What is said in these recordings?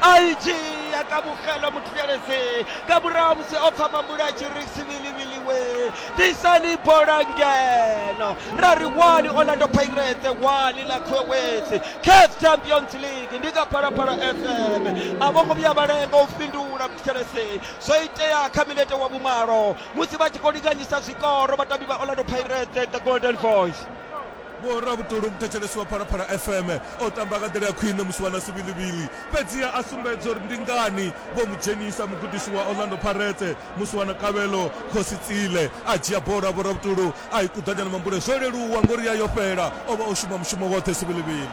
aitshi ya kamogela motlhelese ka morago mose o pfa mambula a tshiri sibilibiliwe disani bolangeno ra ri wani orlando pirates wani la quewes caf champions league ndi ka phalaphala fm a vho ngo vhuya vha lenga u fhindula motlhelese zwo itea kha minete wa vhumalo musi vha tshi khou linganyisa zwikoro vhatambi vha orlando pirates the golden voice Vho Ravhutulu muthetshelesi wa Phalaphala FM o tamba nga nḓila ya khwine musi vha na Sivhilivhili, fhedziha a sumbedza uri ndi ngani vho mu dzhenisa. Mugudisi wa Orlando Pirates musi wa na Kabelo Khosi Tsile a dzhia bola ya Vho Ravhutulu a i kuḓanya na mambule zwo leluwa ngori ya yo fhela, o vha o shuma mushumo woṱhe Sivhilivhili.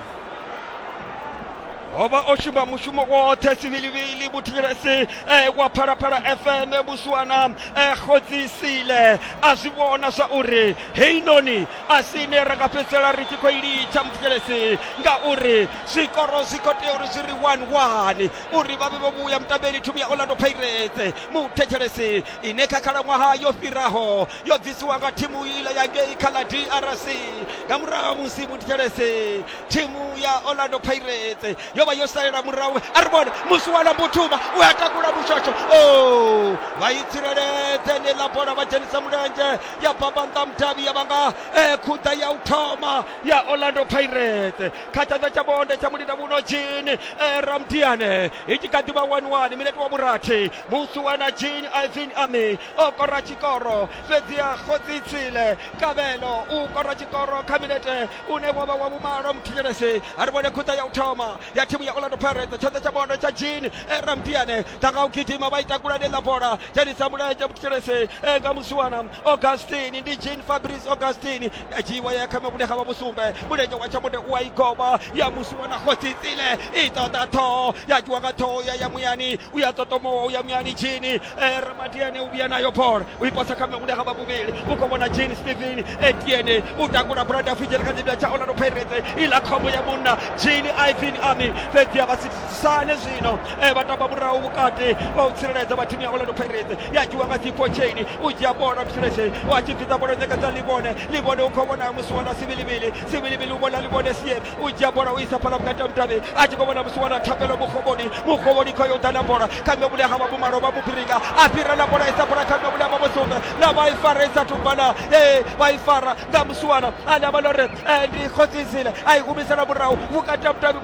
O vha o shuma mushumo woṱhe Sivhilivhili muthetshelesi wa Phalaphala FM musi wa na Khosi Tsile a zwi vhona zwa uri heinoni a si ine ra nga fhedzisela ri tshi khou i litsha muthetshelesi ngauri zwikoro zwi khou tea uri zwi ri one one uri vha vhe vho vhuya mutambeli thimu ya orlando pirates muthetshelesi ine kha khalaṅwaha yo fhiraho yo bvisiwa nga thimu ila ya ngei kha ḽa drc nga murahu ha musi muthetshelesi thimu ya orlando pirates yo vha yo salela murahu a ri vhone musi wa lambuthuma u a takula mushosho o vha i tsireledze ni ḽa bola vha dzhenisa mulenzhe ya bambanda mudavhi ya vhanga eh, khuḓa ya u thoma ya orlando pirates kha tshanḓa tsha bonde tsha mulinda muno jini eh, ramdiane i tshi kha ḓi vha waniwani minete wa vhurathi musi wana jini ivin ami o kora tshikoro fhedzi ya khotsi tsile kavhelo u kora tshikoro kha minete une wa vha wa vhumalo muthinyelesi a ri vhone khuḓa ya u thoma ya thimu ya orlando pirates tshanḓa tsha bonde tsha jini eh, ramdiane ḓa nga u gidima vha i takula ḽa bola dzhenisa mulenzhe vhuthetshelesei e nga musiwana augustini ndi jean fabrice augustini ya dzhiiwa ya khame vhune ha vha vhusumbe mulenzhe wa tshamude u a i goba ya musiwana khotsitsile i ṱoḓa ṱhoho ya dzhiwa nga ṱhoho ya ya muyani u ya ṱotomowa u ya muyani jini e ramadiane u vhuya nayo bola u i posa khame vhune ha vha vhuvhili u khou vhona jini stephen etiene u takula brada fijele kha dzibya tsha orlando pirates iḽa khombo ya munna jini ivin army fhedzi ya vha sane zwino eh, vha tamba murahu vhukati vha u tsireledza vha thimu ya orlando pirates ya dzhiwa nga dzipho chain u dzhia bola mtsheleshe wa tshi bvisa bola ṋekedza livhone livhone u khou vhona musi wana sivilivili sivilivili u vhona livhone sie u dzhia bola u isa phala vhukati ha mudavhi a tshi khou vhona musi wana thapelo mukhovhoni mukhovhoni kho yo ḓa na bola kha nṋe vhule ha vha vhumalo vha mubringa a fhira na bola isa bola kha nṋe vhule ha vha vhosonga na vha i fara i sa thu bala ee vha i fara nga musi wana ane a vha lore ndi khosi isile a i humisela murahu vhukati ha mudavhi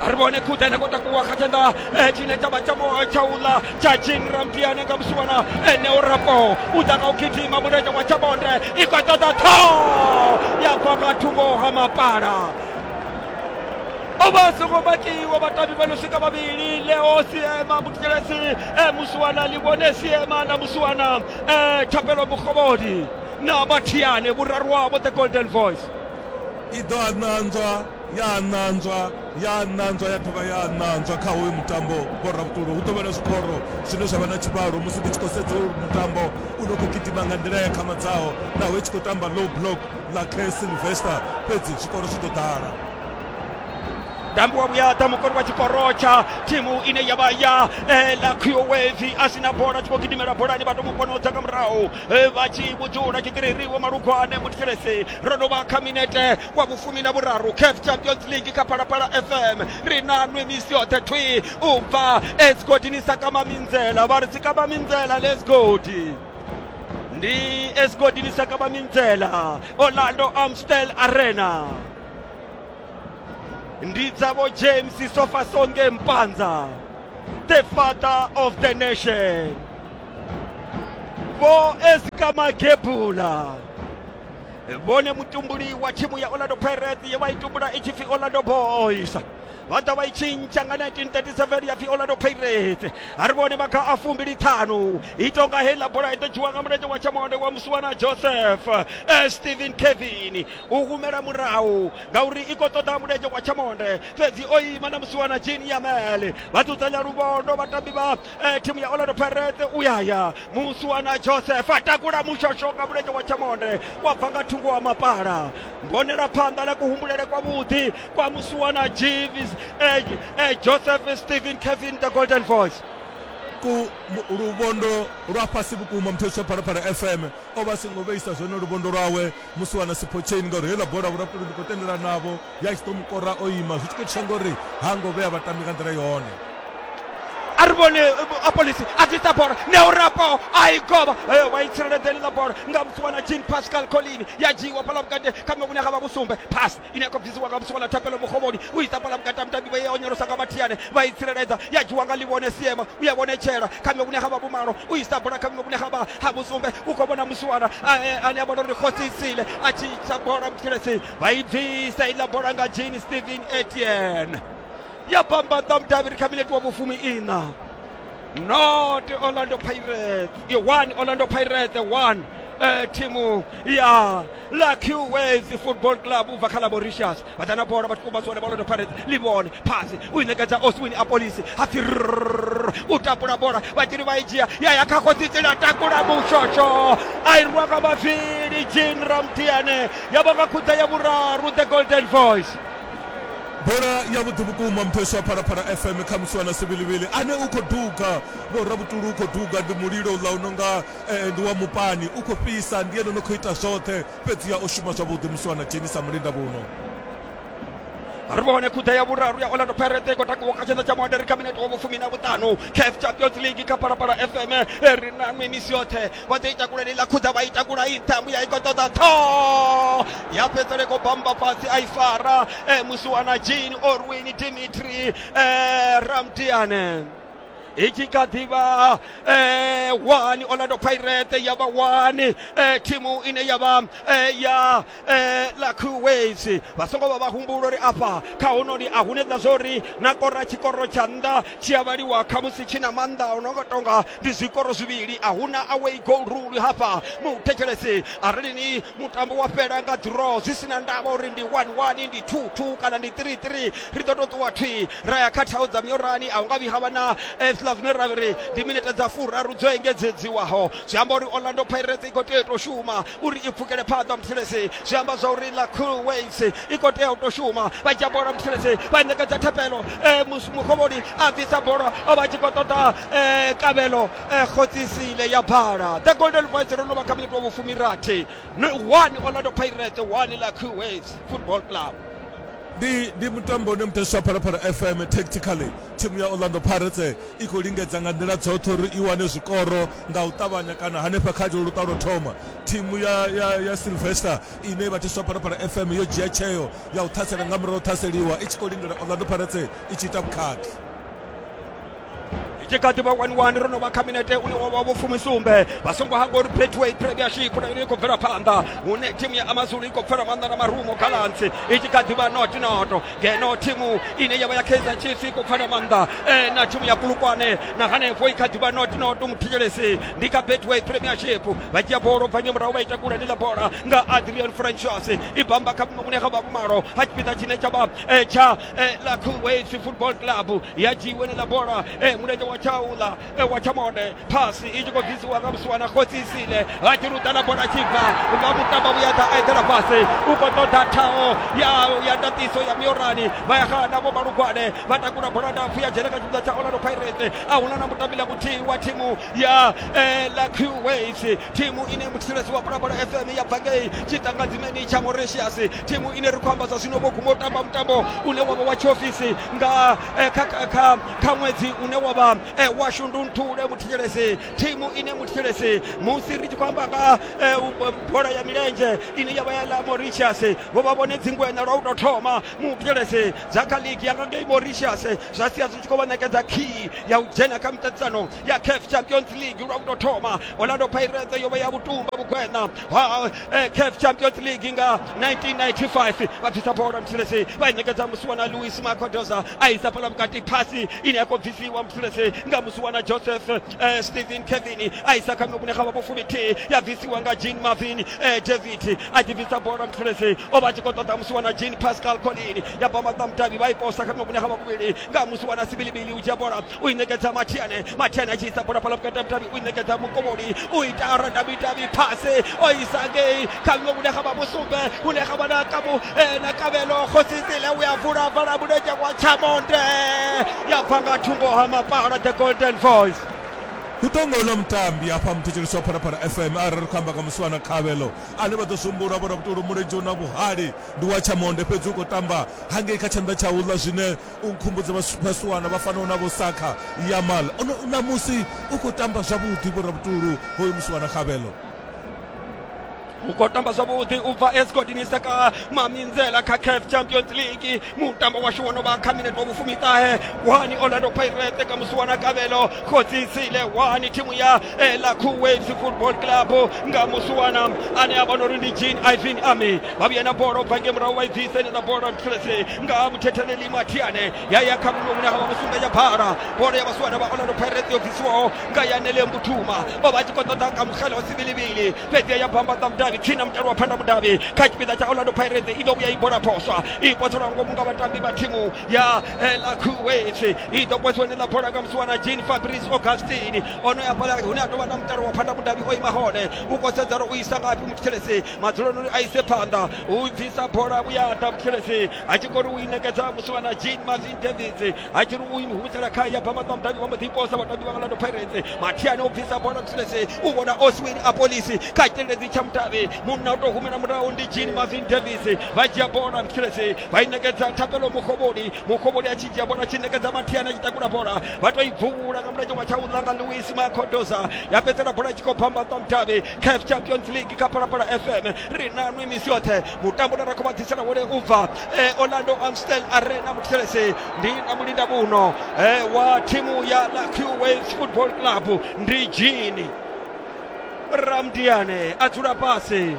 a ri vhone khuḓa ene kho takuwa kha tshanḓa eh, tshine tshavha tsha eh, tsha uḽa tsha jinrampiane nga musiwana ene eh, u rapo u ḓa nga u gidima mulenzhe wa tsha bonde i khou ṱoḓa ṱho ya bva nga thungo ha mapala oba songo makiwa batabi bano sika babili leo siema mukelesi e musiwana libone siema na musiwana e thapelo mukgobodi na bathiane burarwabo the golden voice I ḓo a ṋanzwa, ya a ṋanzwa, ya a ṋanzwa ya dovha ya a ṋanzwa kha hoyu mutambo boravhuṱulo. Hu ḓo vha na zwikoro zwine zwa vha na tshivhalo musi ndi tshi khou sedza hoyu mutambo u no khou gidima nga nḓila ya khamadzaho naho i tshi khou tamba low block ḽa Care Sylvester fhedzi zwikoro zwi ḓo ḓala. mutambi wa vhuyaḓa mukoni wa tshikoro tsha thimu ine ya vha ya eh, la qwevi a si na bola tshi khou gidimela bolani vha to mu ponodza nga murahu eh, vha tshi vhudzula tshitiriri wo malugwane muthelese ro no vha kha minete wa vhufumi na vhuraru caf champions league kha phalaphala fm ri na nwe misi yoṱhe thwi u bva esgodi ni sa kama minzela vha ri si kama minzela lesgodi ndi esgodi ni sa kama minzela orlando amstel arena ndi dzavho james sofa songe mpanza the father of the nation vho esikamakebula vhone mutumbuli wa thimu ya orlando pirates ye vha i tumbula i tshi pfi orlando boys vha ḓa vha i tshintsha nga 1937 ya pfi orlando pirates a ri vhone maga a fumbili ṱhanu i tonga heiḽa bola i ḓo dzhiwa nga mulenzhe wa tshamonde wa musiwana joseph eh, stephen kevin u humela murahu ngauri i khou ṱoḓa mulenzhe wa tshamonde fhedzi o ima na musiwana jini yamele vha dzudzanya luvhondo vhatambi vha eh, timu ya Orlando Pirates uyaya Musuana Joseph atakula mushosho nga mulenzhe wa Chamonde wa bva nga thungo wa mapala mbonela phanḓa ḽa kuhumbulele kwa vhuḓi kwa Musuana Jeeves eh, eh, Joseph Stephen Kevin the Golden Voice ku mu- luvhondo lwa fhasi vhukuma muthetshwa phalaphala fm o vha a songo vheisa zwone luvhondo lwawe musi wana sipho chain ngauri heiḽa bola vhurapuli ndi khou tendelana navho ya tshi ḓo mukora o ima zwi tshi khou itiswa ngori ha ngo vhea vhatambi nga nḓila yone a ri vhone eh, apolisi a ḓisa bola neurapo a i govha eh, vha i tsireledza heḽiḽa bola nga musi wana jean pascal colini ya dzhiiwa fhala vhukati kha mekune ga vha vhusumbe phasi ine ya khou bvisiwa nga vhuswa ḽa thapelo muxovhoni u i sambala vhukati ha mutambi vha ya onyolosa nga vhathiane vha i tsireledza ya dzhiwa nga ḽivhone siema u ya vhonetshela kha vhiṅwe vhune ha vha vhumalo u i sabula kha vhiṅwe vhune ha vha ha vhusumbe u khou vhona musiwana ane a vhona uri khosi isile a tshi tsha bola mutshiletsi vha i bvisa iḽa bola nga jean stephen etienne ya bambaḓa mudavhiri kha minete wa vhufumi iṋa not orlando pirates i 1 orlando pirates 1 eh, thimu ya la qways football club ubva kha laboricious vhaḓana bola vhathu kumba zwone orlando pirates ḽi vhone phasi u i ṋekedza oswini apolisi ha pfi rrrr, u tapula bola vhatshili vha i dzhia ya ya kha khotsitsela takula mushosho a i rwa nga mavili jean ramtiane ya vha nga khudza ya vhuraru the golden voice Bola yavhuḓi vhukuma Mpheswa Phalaphala FM khamusi wa na Sivhilivhili ane u khou duga Vho Ravhutulu u khou duga Ndi mulilo uḽa u no nga eh, ndi wa mupani u khou fhisa Ndi ene no khou ita zwoṱhe fhedziha o shuma zwavhuḓi musi wa na dzheni sa mulinda vhuno ri vhone khuḓa ya vhuraru ya orlando pirate khou takuwa kha tshanḓa tsha muaderi kha minete wa vhufumi na vhuṱanu caf champions league kha phalaphala fm ri na mimisi yoṱhe vha ḓo i takula ḽi ḽa khudza vha i takula i nṱha mbuya i khou ṱoḓa ṱhoho ya fhedzele khou bamba fhasi a i fara e, musiwana jean orwin dimitri e, ramdiane i tshi kha ḓivha eh, wani orlando pirate ya vha wani eh, thimu ine ya vha eh, ya eh, ḽa kuwait vha songo vha vha humbula uri afha kha honoli a hune ḓa zwori na kora tshikoro tsha nnḓa tshi a vhaliwa khamusi tshi na maanḓa o no nga tonga ndi zwikoro zwivhili a huna away goal rule hafha muthetshelesi arali ni mutambo wa fhela nga draw zwi si na ndavha uri ndi 11 ndi 22 kana ndi 33 ri ḓo to ṱuwa thwi ra ya kha thaho dza miorani a hu nga vhi havha na eh, zwiḽa zwine ra ri ndi minete dza furaru dzo engedzedziwaho zwi amba uri orlando pirates i khou tea u tou shuma uri i pfukele phanḓa muthelezi zwi amba zwa uri ḽa cool waves i khou tea u tou shuma vha dzhia bola muthelezi vha ṋekedza thapelo mukhovhoni a bvisa bola o vha tshi khou ṱoḓa kavhelo khotsisile ya bala the golden voice ro no vha kha minito vhufumirathi one orlando pirates one ḽa cool waves football club ndi ndi mutambo une muteswa phalaphala fm tactically thimu ya orlando pirates i khou lingedza nga nḓila dzoṱhe uri i wane zwikoro Nga u ṱavhanya kana hanefha kha ḽo luṱa lwo thoma, thimu ya, ya, ya Sylvester ine i vhathiswa Phalaphala FM yo dzhia tsheo ya u ṱhasela nga murahu ṱhaseliwa i tshi khou lindela Orlando Pirates i tshi ita vhukhakhi. i tshi kha ḓi vha wani wani ro no vha kha minete une wa vha vhofumisumbe vha songo hangwa uri betway premiership na yone i khou bvela phanḓa hune thimu ya amazulu i khou pfela maanḓa na marumo gallants i tshi kha ḓi vha not not ngeno thimu ine yavha ya kaizer chiefs i khou pfala maanḓa eh, na thimu ya kulukwane na hanefho i kha ḓivha not not muthetshelesi ndi kha betway premiership vha dzhia bolo bva nyamurahu vha ita kule ndi ḽa bola nga adrian francis i bamba kha mune kha vhakumalo ha tshipiḓa tshine tsha vha eh, tsha eh, la kuwait football club ya dzhiiwe ni ḽa bola eh, mulenzhe wa tshaula ewa tsha mone phasi i tshi khou bvisiwa nga musiwana khotsi isile ha tshi luḓa na bola tshi bva nga vhuṱamba vhuya ḓa a eḓela fhasi u khou ṱoḓa thaho ya ya ndatiso ya miorani vha ya xana vho malugwane vha takula bola ndapfu ya dzhena kha tshipiḓa tsha orlando pirates a huna na mutambi la muthihi wa thimu ya eh, la q waves thimu ine muthetshelesi wa pulabola fm ya bva ngei tshiṱangadzimeni tsha mauritius thimu ine ri khou amba zwa zwino vho guma u tamba mutambo une wavha wa tshiofisi nga eh, kha, kha, kha kha ṅwedzi une wa vha e, wa shundunthule muthetshelesi thimu ine muthetshelesi musi ri tshi khou amba nga e, bola ya milenzhe ine ya vha ya ḽa mauritius vho vha vhone dzingwenya lwa u tou thoma muthetshelesi dza kha ligi ya nga ngei mauritius zwa sia zwi tshi khou vha ṋekedza khiyi ya u dzhena kha miṱaṱisano ya CAF Champions League lwa uto thoma Orlando Pirates yo vha ya vhutumba vhukwena ha eh, CAF Champions League nga 1995 vha bvisa bola mthulesi vha ṋekedza musiwana Luis Macodoza a isa fhala vhukati phasi ine ya khou bvisiwa mthulesi nga musiwana Joseph eh, Stephen Kevin a isa kha mivhune kha vhapo fuminthihi ya bvisiwa nga Jean Marvin eh, David a ḓi bvisa bola mthulesi o vha a tshi khou ṱoḓa musiwana Jean Pascal Colin ya bva maṱamutavhi vha i posa kha mivhune kha vhakuvhili nga musiwana Sibilibili u dzhia bola u i ṋekedza mathiane mathiane a tshi isa bola fhala vhukati ha vhudavhi u i ṋekedza mukomoli u ita aradavhidavhi phase o isa ngei kha vhiwe vhune ga vha vhusumbe vhune ga vha na kamu eh, na kavhelo khosisile u ya vula vala mulenzhe wa tshamonde ya bva nga thungo ha mapala the golden voice hu ḓo nga uḽa mutambi hafha muthetshelesi wa phalaphala fm arali ri khou amba nga muswana khavhelo ane vha ḓo sumbulwa vho rabutolo mulenzhe u na vhuhali ndi wa tshamonde fhedzi u khou tamba hangei kha tshanḓa tsha uḽa zwine U nkhumbudza vhasiwana vha fanaho na vho Saka, Yamal, o no, ṋamusi u khou tamba zwavhuḓi, vho Rabutulu hoyu musiwana Kgabelo. u khou tamba zwavhuḓi u bva escodini sa ka maminzela kha caf champions league mutambo washu wo no vha kha minete wa vhufumiṱahe wani orlando pirate ka musi wana kavhelo khodzisile wani thimu ya eh, lakhu waves football club nga musi wana ane a vhona uri ndi jean ivin army vha vhuya na bola u bva nge murahu vha i bvisa ine na bola nga ha vhuthetheleli mathiane ya ya kha muṅwe hune ha vha musumba ya bhala bola ya vhasiwana vha orlando pirates yo bvisiwaho nga yanele mbuthuma o vha a tshi khou ṱoḓa kamukgela wa sivilivili fhedzi ya bvambaḓa mudavhi tsini na mutalo wa phanḓa mudavhi kha tshipiḓa tsha orlando pirates i ḓo vhuya i bola phoswa i pothelwa ngomu nga vhatambi vha thimu ya lacuwesi i ḓo posiwa ni ḽa bola nga musiwana jean fabrice augustin o no ya fhala hune a tou vha na mutalo wa phanḓa mudavhi o ima hone u khou sedzana u isa ngafhi muthethelesi madzuloni uri a ise phanḓa u dzisa bola vhuyaḓa muthelesi a tshi khou ri u i nekedza musiwana jean marvin davids a tshi ri u ihumisela kha ya bva maṱwa mudavhi wa mbo ḓi posa vhatambi vha orlando pirates mathiani o bvisa bola muthelesi u vhona oswin a polisi kha tshiteledzi tsha mudavhi munna u tou humela murahu ndi jean marvin davids vha dzhia bola muthelesi vha i nekedza thapelo mukhovholi mukhovholi a tshi dzhia bola tshi nekedza mathiani a tshi takula bola vha tou i bvuvhula nga mulenzhe wa tsha u langa louis macodoza ya fhedzela bola tshi khou bva maṱwa mudavhi caf champions league ka phalaphala fm ri na nwi misi yoṱhe mutambo na ra khou vha ḓisela wone u bva eh, orlando amstel arena muthetshelese ndi na mulinda muno eh, wa thimu ya la qwaves football club ndi jini ramdiane a dzula fhasi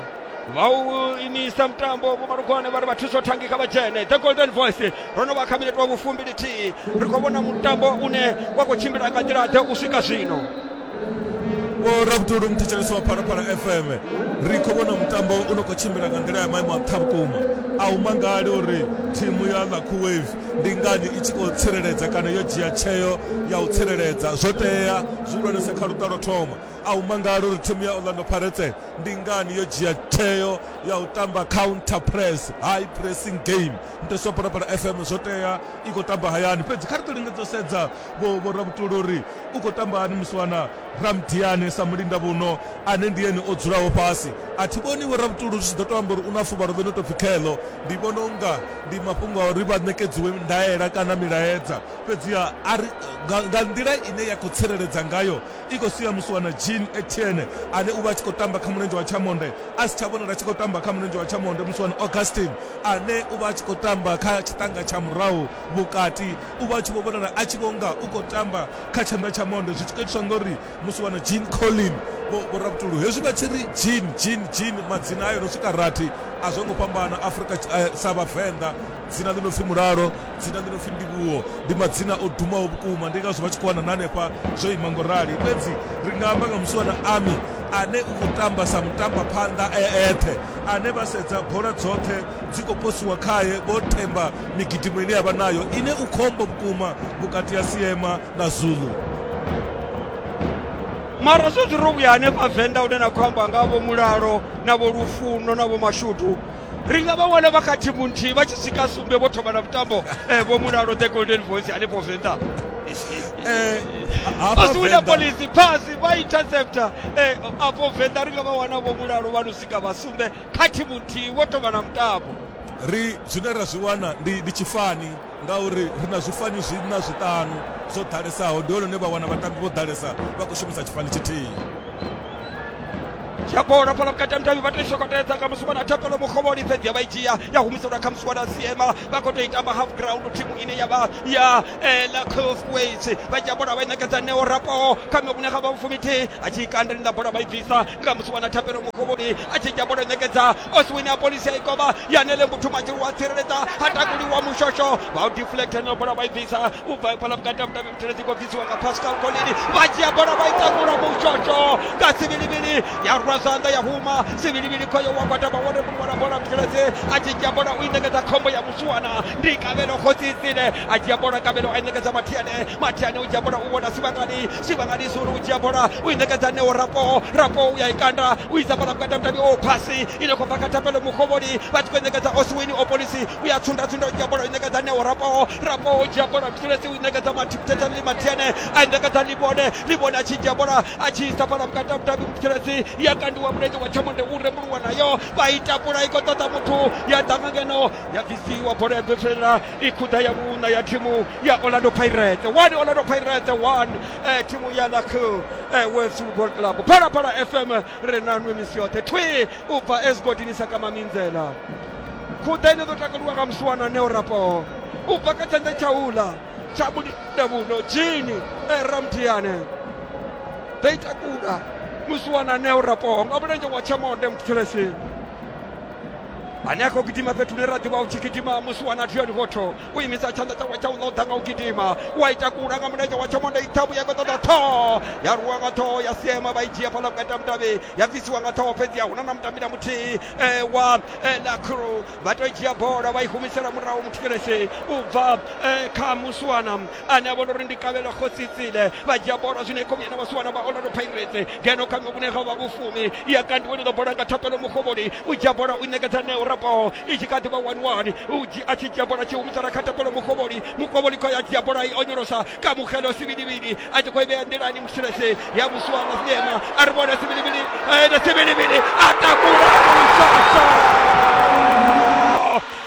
vha u imisa mutambo vhomalugwane vha ri vha thuso thangi kha vha dzhene the golden voice ro no vha kha minete wa vhufumbilithihi ri khou vhona mutambo une wa khou tshimbila nga nḓila ḓe u swika zwino vho rabudulu mthetshelesi wa phalaphala fm ri khou vhona mutambo u no khou tshimbila nga nḓila ya maimo a nṱha vhukuma a u mangali uri thimu ya lucky wave ndi ngani i tshi khou tsireledza kana yo dzhia tsheo ya u tsireledza zwo tea zwihulwanese kha luṱa lwo thoma a u mangali uri thimu ya orlando pirates ndi ngani yo dzhia tsheo ya u tamba counter press high pressing game mthetshelesi wa phalaphala fm zwo tea i khou tamba hayani fhedzi kha ri ḓo lingedza u sedza vho vho rabutulu uri u khou tamba hani muswana ramdiane sa mulinda vhuno ane ndi ene o dzulaho fhasi a thi vhoni vho ravhutulu zwi tshi ḓo to amba uri u na fuvhalo ḽo no tou pfhi kheḽo ndi vhona unga ndi mafhungo a uri vha ṋekedziwe ndaela kana milaedza fhedziha a ri nga, nga nḓila ine ya khou tsireledza ngayo i khou sia muswana jean etienne ane u vha a tshi khou tamba kha mulenzhe wa tshamonde a si tsha vhonala a tshi khou tamba kha mulenzhe wa tshamonde muswana augustin ane u vha a tshi khou tamba kha tshiṱanga tsha murahu Vhukati, u vha a tshi vho vhonala a tshi vho nga u khou tamba kha tshanḓa tsha monde, zwi tshi khou itiswa nga uri musi wana Jean Collin vho Vho-Ravhutulu, hezwi vha tshi ri Jean, Jean, Jean, madzina ayo no swika rathi a zwo ngo fhambana Afrika sa Vhavenḓa, dzina ḽi no pfi Mulalo, dzina ḽi no pfi Ndivhuwo, ndi madzina o dumaho vhukuma, ndi ngazwo vha tshi khou wana na hanefha zwo ima ngo rali. Fhedzi ri nga amba nga musi wana Ami ane u khou tamba sa mutambaphanḓa e eṱhe, ane vha sedza bola dzoṱhe dzi khou posiwa khae, Vho Themba migidimo ine ya vha nayo ine u khombo vhukuma vhukati ha siema na zulu mara zwezwi ro vhuya hanefha venḓa une na khou amba nga vho mulalo na vho lufuno na vho mashudu ri nga vha wana vha kha thimu nthihi vha tshi swika sumbe vho thoma na vhutambo eh, vho mulalo the golden voice hanefho venḓa eh, asi wina polisi phasi vha intercepta eh, afho venḓa ri nga vha wana vho mulalo vha no swika vha sumbe kha thimu nthihi vho thoma na mutambo Ri zwine ra zwi wana ndi ndi tshifani ngauri ri na zwifani zwiṋa zwiṱanu zwo ḓalesaho ndi hone hune vha wana vhatambi vho ḓalesa vha khou shumisa tshifani tshithihi. dzhia bola fhala vhukati ha mudavhi vha tou shokotedza nga musi wana thapelo mukhovhoni fhedzi ya vha i dzhia ya humiselwa kha musi wana siema vha khou tou i tamba half ground thimu ine ya vha ya la cofways vha dzhia bola vha i ṋekedza neo rapo kha miṅwe vhune kha vha vhufumi thihi a tshi i kanda linda bola vha i bvisa nga musi wana thapelo mukovhoni a tshi dzhia bola ṋekedza oswini a polisi ya ikovha yanele muthu matshilu wa tsireledza ha takuliwa mushosho vha u deflecta no bola vha i bvisa u bva fhala vhukati ha mudavhi vhuteledzi khou bvisiwa nga pascal colini vha dzhia bola vha i takula mushosho nga sivhilivhili ya rwa zwanḓa ya huma sivhilivhili khoyo wa gwatama wone mulwala bola vhuteledzi a tshi dzhia bola u i ṋekedza khombo ya musuwana ndi kavhelo khotsitsile a dzhia bola kavhelo a i ṋekedza mathiane mathiane u dzhia bola u vhona sivhangani tshivhanganisi uri u dzhia bola u i ṋekedza neo rapo rapo u ya i kanda u isa fhala vhukati ha mutambio o phasi i no khou bva kha thapelo mukhovholi vha tshi khou i ṋekedza oswini o polisi u ya tsunda tsunda u dzhia bola u i ṋekedza neo rapo rapo u dzhia bola msulesi u i ṋekedza mathipithethani ḽi mathiene a i ṋekedza ḽivhone ḽivhone a tshi dzhia bola a tshi isa fhala vhukati ha mutambi msulesi ya kandiwa mulenzhe wa thamonde u rembuluwa nayo vha i takula i khou ṱoḓa muthu ya ḓa nga ngeno ya bvisiwa bola ya ḓo tswelela i khuḓa ya vhuṋa ya thimu ya orlando pirate one orlando pirate one eh, thimu ya lak eh, west football club phalaphala fm ri na nwe misi yoṱhe thwi u bva esigodini sa kamaminzela khuḓa ine ḓo takaliwa nga musiwana neo rapo u bva kha tshanḓa tsha ula tsha vhudavhuno jini eh, ramthiane ḓo i takula musiwana neo rapo nga mulenzhe wa tshamonde muthelesi ane a khou gidima fhethu hune ra ḓivha u tshi gidima musi wana drion votho u imisa tshanḓa tshawe tsha u ḽa u ḓa nga u gidima u a ita kula nga mulenzhe wa tshomonda ithabu ya khou ṱoḓa ṱhoho ya rwiwa nga ṱhoho ya sema vha i dzhia fhaḽa vhukati ha mutavhi ya bvisiwa nga ṱhoho fhedzi a huna na mutambi na muthihi wa la crew vha tou dzhia bola vha i humisela murahu muthikelesi u bva kha muswana ane a vhona uri ndi kavhelo khosi tsile vha dzhia bola zwino ikomi ene vha si wana vha orlando pirates ngeno kha vhune ha vha vhufumi ya kandiwa ḽiḓo bola nga thapelo mukovhoni u dzhia bola u ṋekedza neo raboho i tshi kha ḓi vha one one u dzhi a tshi dzhia bola tshi humisela kha thapelo mukovhoni mukovhoni khou ya dzhia bola i onyolosa ka mukhelo sivhilivhili a tshi khou i vhea nḓilani musilese ya musuwana sinema a ri vhona sivhilivhili ene sivhilivhili a takula musasa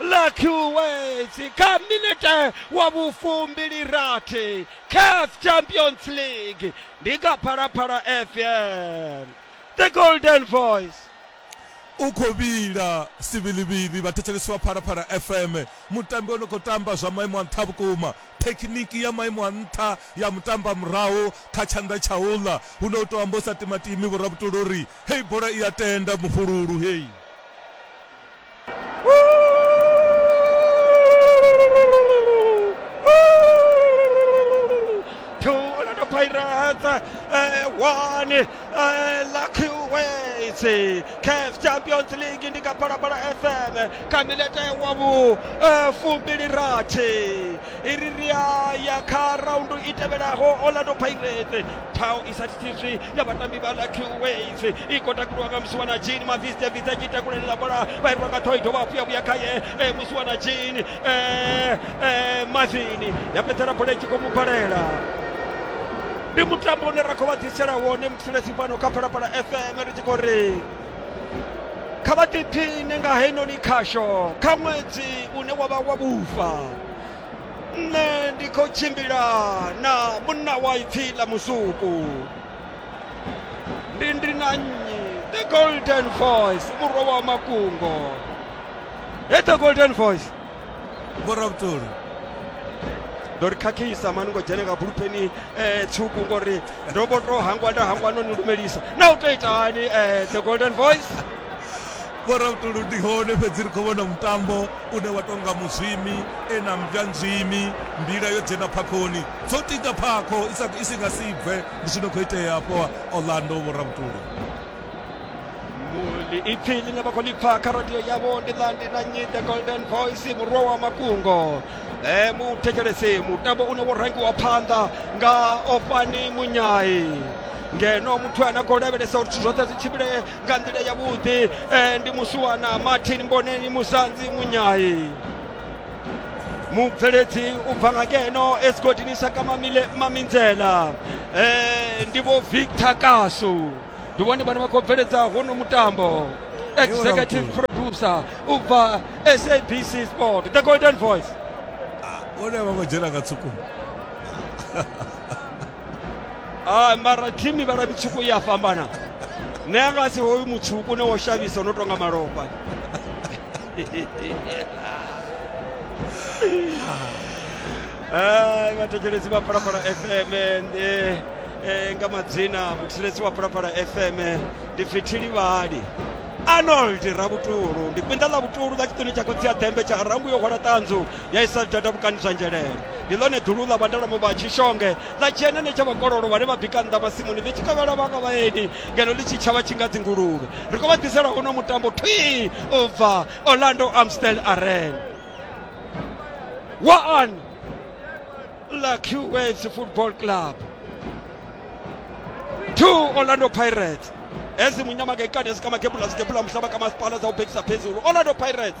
ḽa Kuwait kha minete wa vhufumbilirathi CAF Champions League ndi kha Phalaphala FM. The Golden Voice. U khou vhila sivhilivhili vhathetshelesi vha Phalaphala FM. Mutambi o no khou tamba zwa maimo a nṱha vhukuma. Thekhiniki ya maimo a nṱha ya mutambamurahu kha tshanḓa tsha u ḽa hune u tou amba u sa timatimi, vho Rabutula uri heyi bola i a tenda mufhululu hei. Chelsea CAF Champions League ndi kapalapala FM kamilete wabu eh, fumbili rathi iri ri ya ya kha raundu i tevhelaho Orlando Pirates phawo i sa thithiswi ya vatambi va lucky ways i kota ku lwanga musiwana jini maviste viste tshi takulelela bola vha irwa nga thoito vha vhuya vhuya khaye eh, musiwana jini eh, eh, mavini ya fhedzela bola i tshi khou mu balela ndi mutambo une ra khou vha ḓisela wone mutshilesi fhano kha phalaphala fm ri tshi khou ri kha vha ḓiphine nga heinoni khasho kha ṅwedzi une wa vha wa vhufa nṋe ndi khou tshimbila na munna wa ipfi ḽa musuku ndi ndi na nnyi the golden voice murwa wa makungo he the golden voice vhorabutolo ndo ri khakhisa mani ngo dzhene nga bulupeni um tswuku ngori ndo vho to hangwa nda hangwa no ni lumelisa na u to itani um the golden voice Vho Rautolo ndi hone fhedzi ri khou vhona mutambo une wa tou nga Muzwimi e na mmbwa nzwimi. Mbila yo dzhena phakhoni, dzo tiga phakho i si nga si bve. Ndi zwi no khou itea hafho Orlando, Vho Rautolo. Muli ipfi ḽine vha khou ḽi pfa kha radio yavho ndi ḽa ndi na nnyi the golden voice murwa wa makungo e muthetshelesi mutambo une wo rangiwa phanḓa nga ofani munyai ngeno muthu ane a khou lavhelesa uri zwithu zwoṱhe zwi tshimbile nga nḓila yavhuḓi eh, ndi musiwana martin mboneni musanzi munyayi mubveledzi u bva nga ngeno esigodini saka mamile maminzela eh, ndi vho victor kasu ndi vhone vhane vha khou bveledza hono mutambo executive producer u bva sabc sport the golden voice Olha, vamos tirar a Katsuko. a mara thimu mivhala mitswuku i a fhambana nṋe a nga si hoyu mutswuku une wo shavhisa no tonga malofha Ai, vhathetshelesi vha phalaphala fm ndi eh, nga madzina muthetshelesi wa phalaphala fm ndi fithili vhali arnold rabutulu ndi kwinda ḽa vutulu ḽa tshiṱuni tsha khotsi ya ḓembe tsha rangu yo hwala ṱanzu ya isa data vhukani zwa nzhelele ndi ḽone dulu ḽa vhandalamu vha tshishonge ḽa dzhia nene tsha vhakololo vhane vha bika nnḓa masimuni ḽi tshi kavhela vhanga vhaeni ngeno ḽi tshi tshavha tshi nga dzinguluvhe ri khou vha ḓisela uno mutambo thwii u bva orlando amstel arena waan la qwaves football club two orlando pirates ezimunyama ngekani ezikamakebula zikebula mhlaba kamasipala zawubhekisa phezulu orlando pirates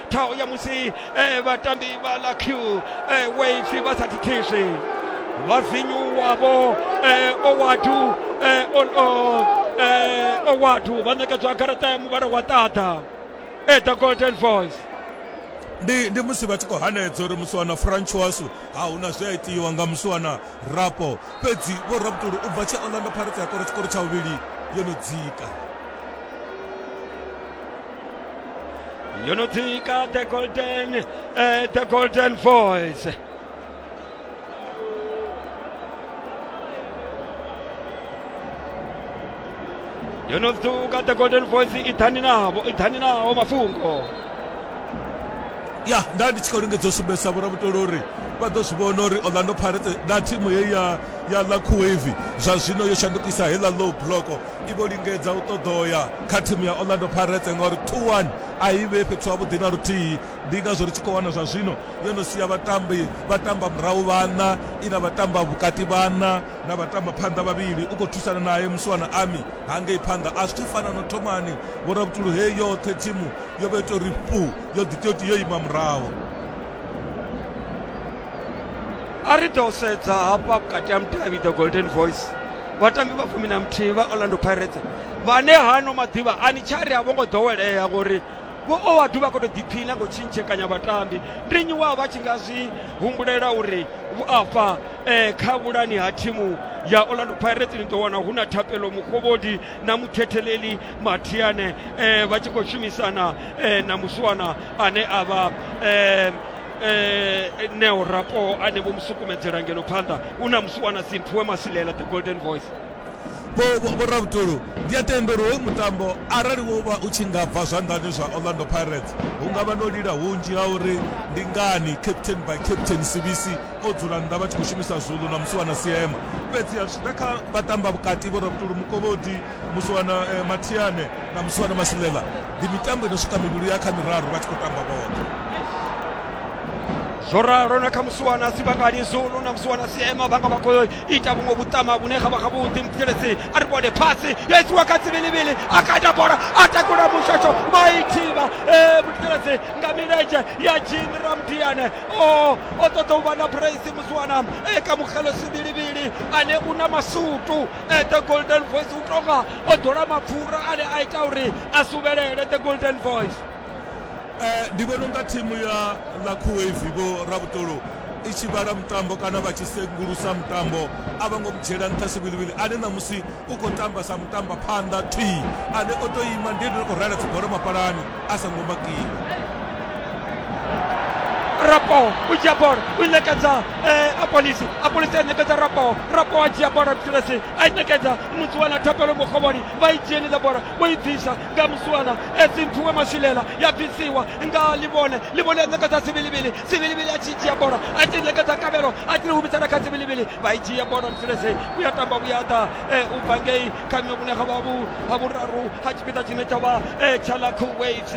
ṱhaho ya musi eh, vhatambi vha ḽa q eh, wave vha sa thithizwi vhavinyu wavho eh, owadu eh, on on eh, owadu vha ṋekedzwa garaṱa ya muvhala wa ṱaḓa eh, the golden voice ndi ndi musi vha tshi khou hanedza uri musiwana francoiso ha hu na zwi a itiwa nga musiwana rapo fhedzi vho rabutulu u bva tshe orlando pirates ya kora tshikoro tsha vhuvhili yo no dzika Yo no tika the golden, uh, the golden voice. Yo no tika the golden voice ithani navo, ithani navo mafungo. ya nda ndi tshi khou lingedza u sumbedzisa vhoramutolo uri vha ḓo zwi vhona uri orlando pirates na thimu heyi ya ya la kuwave zwa zwino yo shandukisa heiḽa low block I vho lingedza u ṱoḓa u ya kha thimu ya Orlando Pirates ngauri Tuan a i vhee fhethu havhuḓi na luthihi. Ndi ngazwo ri tshi khou wana zwa zwino yo no sia vhatambi vha tamba murahu vhaṋa, i na vhatamba vhukati vhaṋa, na vhatamba phanḓa vhavhili, u khou thusana nae musiwana Ami hangei phanḓa. A zwi tsha fana na thomani, Vho Rabutulu. Hei yoṱhe thimu yo vha yo tou ri fhu, yo ḓi tou tou ima murahu. a ri ḓo sedza hafha vhukati ha mudavhi the golden voice vhatambi vha fumi na muthihi vha orlando pirates vhane hano maḓuvha a ni tshari a vho ngo ḓowelea ngori vho o vha duvha khou tou ḓiphina ngo tshintshekanya vhatambi ndi nnyi wa vha tshi nga zwi humbulela uri afha um kha vhulani ha thimu ya orlando pirates ni ḓo wana hu na thapelo mukovhodi na muthetheleli mathiane um vha tshi khou shumisana um na muswana ane a vha um eh neo rapo ane vho musukumedzela ngeno phanḓa u na musi wana simpfu we masilela the golden voice vhoravhutulu ndi a tenda uri hoyu mutambo arali wo vha u tshi nga bva zwanḓani zwa orlando pirates hu nga vha no lila hunzhi ha uri ndi ngani captain by captain sibisi o dzula nnḓa vha tshi khou shumisa zulu na musi wana siema fhedzi a zwi ḓa kha vhatamba vhukati vhoravhutulu mukovhodi Muswana Mathiane na Muswana Masilela ndi mitambo ino swika mivhili ya kha miraru vha tshi khou tamba vhoṱhe. zwo ralo na kha musiwana sibangani zulu na musiwana siema vhanga vha khou ita vhuṅwe vhuṱama vhune kha vha kha vhuḓi muthelesi a ri vhone phasi yo isiwa kha tsivilivili a kata bola a takula mushasho maithiba muthelesi nga milenzhe ya jimi ramdiane o o ṱoḓa u vha na praise musiwana ka mukgelo sivilivili ane u na masutu eh, the golden voice u tonga o ḓola mapfura ane a ita uri a suvhelele the golden voice eh, ndi vhona unga thimu ya la khuwevi vho rabutolo i tshi vhala mutambo kana vha tshi sengulusa mutambo a vha ngo dzhiela nṱha sivhilivhili ane ṋamusi u khou tamba sa mutamba phanḓa thwii ane o to ima ndi ene o rela dzibolo mapalani a songo makiwa rapo u dzhia bola u i ṋekedza eh, apolisi apolisi a ṋekedza rapo rapo a dzhia bola butilesi a i ṋekedza musuwana thapelo mukhovhoni vha i dzhenisa bola vho i bvisa nga musuwana esimphiwe maswilela ya bvisiwa nga livhone livhone a ṋekedza sivilivili sivilivili a tshi dzhia bola a tshi ṋekedza kavhelo a tshi humisela kha sivilivili vha i dzhia bola butilesi vhuya tamba vhuya ḓa eh, u bva ngei kanya vhune ha vha vhu ha vhuraru ha tshipiḓa tshine tsha vha tsha ḽa kuwait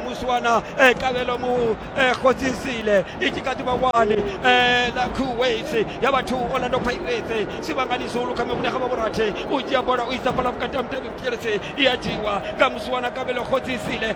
muswana kavhelo mu khodzisile i tshi kha ḓi vha wani ḽa kuwait ya vhathu orlando pirates sivhangani zulu kanya vhune ha vha vhurathi u dzhia bola u isa fhala vhukati ha mutevhe vhukelesi i a dzhiwa nga muswana kavhelo khodzisile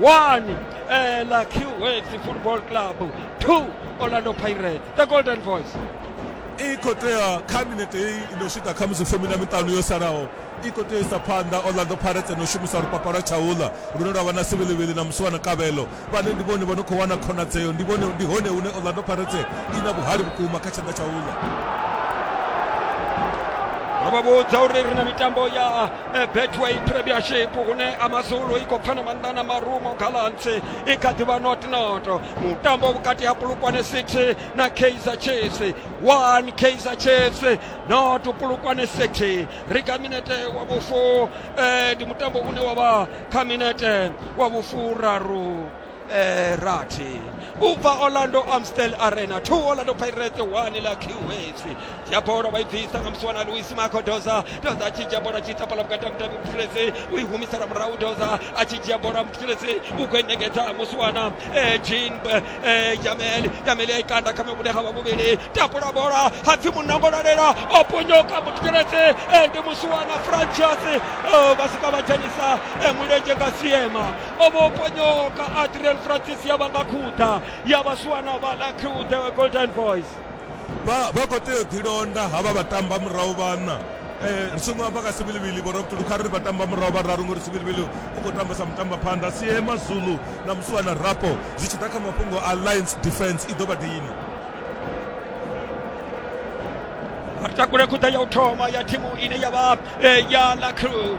1 eh, la qx football club 2 orlando pirates the golden voice i khou tea kha minete hei i no swika kha musi fumi na miṱanu yo salaho i khou tea isa phanḓa orlando pirates no shumisa lupapa lwa tshaula lune lwa vha na sivhilivhili na musi wana kavhelo vhane ndi vhone vha no khou wana khonadzeo ndi vhone ndi hone hune orlando pirates i na vhuhali vhukuma kha tshanḓa tshaula ro vha vhudza uri ri na mitambo ya Eh, betway premiership hune amazulu i khou pfana maṋda na marumo gallants i kha ḓivha notnoto mutambo vhukati ha pulukwane city na kaizer chiefs one kaizer chiefs not pulukwane city ri kha minete wa vhufu eh, ndi mutambo une wa vha kha minete wa vhufuraru eh, rathi u bva orlando amstel arena 2 orlando pirates 1 la qhs dzhia bola vha i bvisa nga musi wana luis marco doza doza a tshi dzhia bola tshi tapala vhukati ha mutambi mutshilesi u i humisela murahu doza a tshi dzhia bola mutshilesi u khou engedza musi wana eh, jean eh, jamel jamel ya i kanda kha mivhule ha vha vhuvhili tapula bola ha pfi munangolalela o ponyoka mutshilesi eh, ndi musi wana franchas eh, vha sika vha dzhenisa eh, mulenzhe nga siema o vha o ponyoka adriel francis ya vha nga khuḓa ya vha swiwa na vha la khuḓa golden boys vha vha khou tea u ḓilonda havha vha tamba murahu vhana um ri songo amba nga sivhilivhili vho rabutulu kha ri vha tamba murahu vhararu ngori sivhilivhili u khou tambesa mutamba phanḓa sie mazulu na musuwa na rapo zwi tshi ḓa kha mafhungo a lines defense i ḓo vha dini ri takule khuḓa ya u thoma ya thimu ine ya vha eh, ya la crew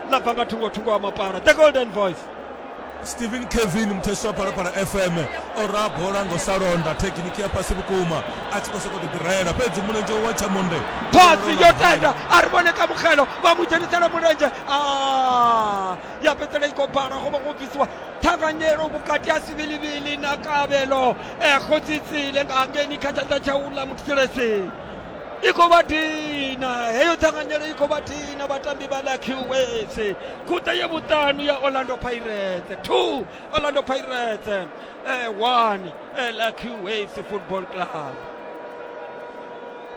ḽa bva nga thungo thungo ha mapara the golden voice stephen kevin muthesi wa phalaphala fm o raha bola ngo sa londa thekiniki ya fhasi vhukuma a tshi khou sokou ḓiḓirayela fhedzi mulenzhe wa tshamonde pasi yo tenda a ri vhone ka mugelo vha mu dzhenisela mulenzhe ah, ya fhedzela i khou bala go vha go bvisiwa ṱhanganyelo vhukati ha sivhilivhili na kavhelo ekgo tsitsile nga ngeni kha tshanḓa tsha u ḽa muthiselesini i khou vha dina heyo ṱhanganyelo i khou vha dina vhatambi vha lucky waves khuṱa ye vhuṱanu ya orlando pirates two orlando pirates eh, one eh, lucky waves football club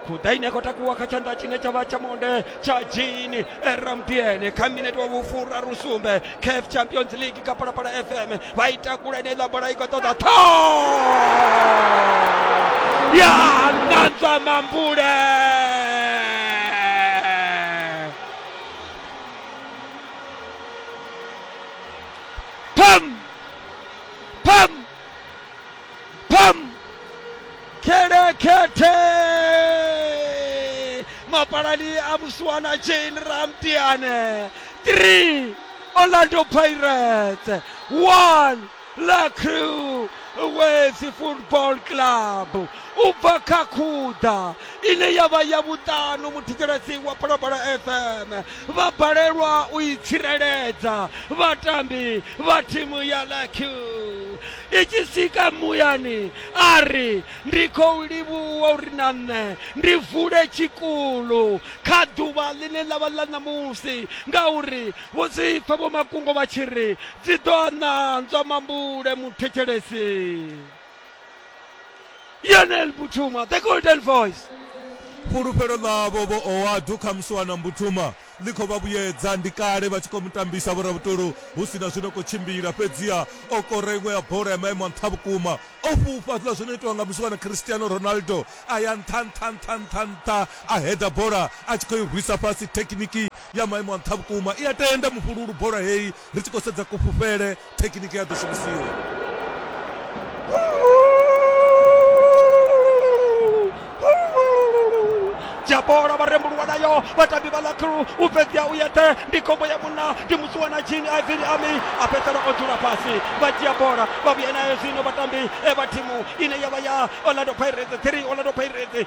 khuḓa ine khou takuwa kha tshanḓa tshine tsha vha tsha monde chajini eramdiene kha minete wa vhufura rusumbe caf champions league kha phalaphala fm vha i takula ine iḽa bola i khou ṱoḓa tho ya nanzwa mambule pam kelekete mapalani a musiwana jane ramtiane 3 orlando pirates 1 la crew wesi football club u bva kha khuda ine ya vha ya vhuṱanu muthetshelesi wa phalaphala fm vha balelwa u i tsireledza vhatambi vha thimu ya la crew i tshi swika muyani a ri ndi khou livhuwa uri na nṋe ndi vule tshikulu kha ḓuvha ḽine ḽa vha ḽa ṋamusi ngauri vho zwi pfa vho makungo vha tshi ri dzi ḓo ananzwa mambule muthetshelesi yonel butuma the golden voice fhulufhelo ḽavho vho oadu kha musi wa na mbutuma ḽi khou vha vhuyedza. Ndi kale vha tshi khou mu tambisa vhoravhutolo hu si na zwi no khou tshimbila, fhedziha o kora iṅwe ya bola ya maimo a nṱha vhukuma. O fhufha zwiḽa zwo no itiwa nga musiwana Cristiano Ronaldo, a ya nṱha, nṱha, nṱha, nṱha, nṱha, a header bola a tshi khou i rwisa fhasi. Thekhiniki ya maimo a nṱha vhukuma i a tenda mufhululu bola heyi. Ri tshi khou sedza kufhufhele, thekhiniki ya ḓo shumisiwa. dzhia bola vha rembuluwa nayo vhatambi vha lakru u fhedzea u yeṱhe ndi khombo ya munna ndi musuwa na jini ivini ami a fhedzisela o dzula fhasi vha dzhia bola vha vhuya nayo zwino vhatambi e vha thimu ine ya vha ya orlando pirates three orlando pirates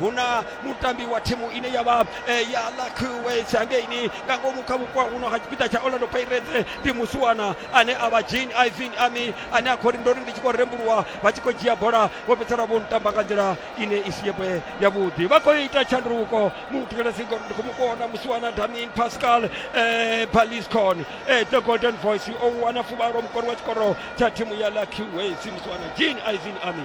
hu na mutambi wa thimu ine ya vha eh, ya lakuwes hangeini nga ngomu kha vhukwa huno ha tshipiḓa tsha orlando pirates ndi musiwana ane a vha jean ivin ami ane a khou ri ndo ri ndi tshi khou rembuluwa vha tshi khou dzhia bola vho fhedzisela vho ntamba nga nḓila ine i si yebwe yavhuḓi vha khou ita tshanduko muthu kana si ngori ndi khou mu kona musiwana damin pascal eh, baliscon eh, the golden voice o wana fuvhalo mukori wa tshikoro tsha thimu ya lakuwes musiwana jean ivin ami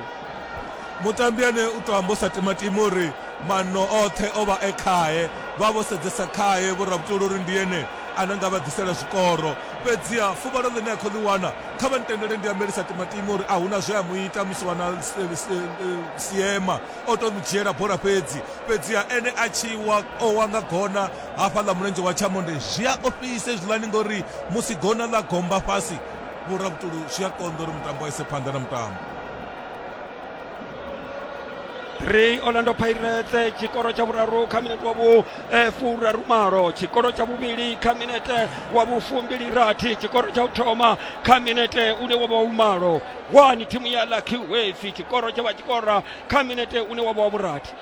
mutambi ane u to amba u sa timatima uri manno oṱhe o vha e khae vha vho sedzesa khae vho rabutula uri ndi ene ane nga vha ḓisela zwikoro fhedziha fuvhalo ḽine a khou ḽi wana kha vha ntendele ndi ambeli sa timatima uri a huna zwe a mu ita musi wana siema o to mu dzhiela bola fhedzi fhedziha ene a tshi wa o wa nga gona hafha ḽa mulenzhe wa tshamonde zwi a ofhisa hezwiḽani ngori musi gona ḽa gomba fhasi vhurabutulu zwi a konḓa uri mutambo a ise phanḓa na mutambo ri orlando pirates tshikoro tsha vhuraru kha minete wa vhu eh, furaru malo tshikoro tsha vhuvhili kha minete wa vhufumbili rathi tshikoro tsha u thoma kha minete une wa vha wa vhumalo wani thimu ya lucky wave tshikoro tsha vha tshikora kha minete une wa vha wa vhurathi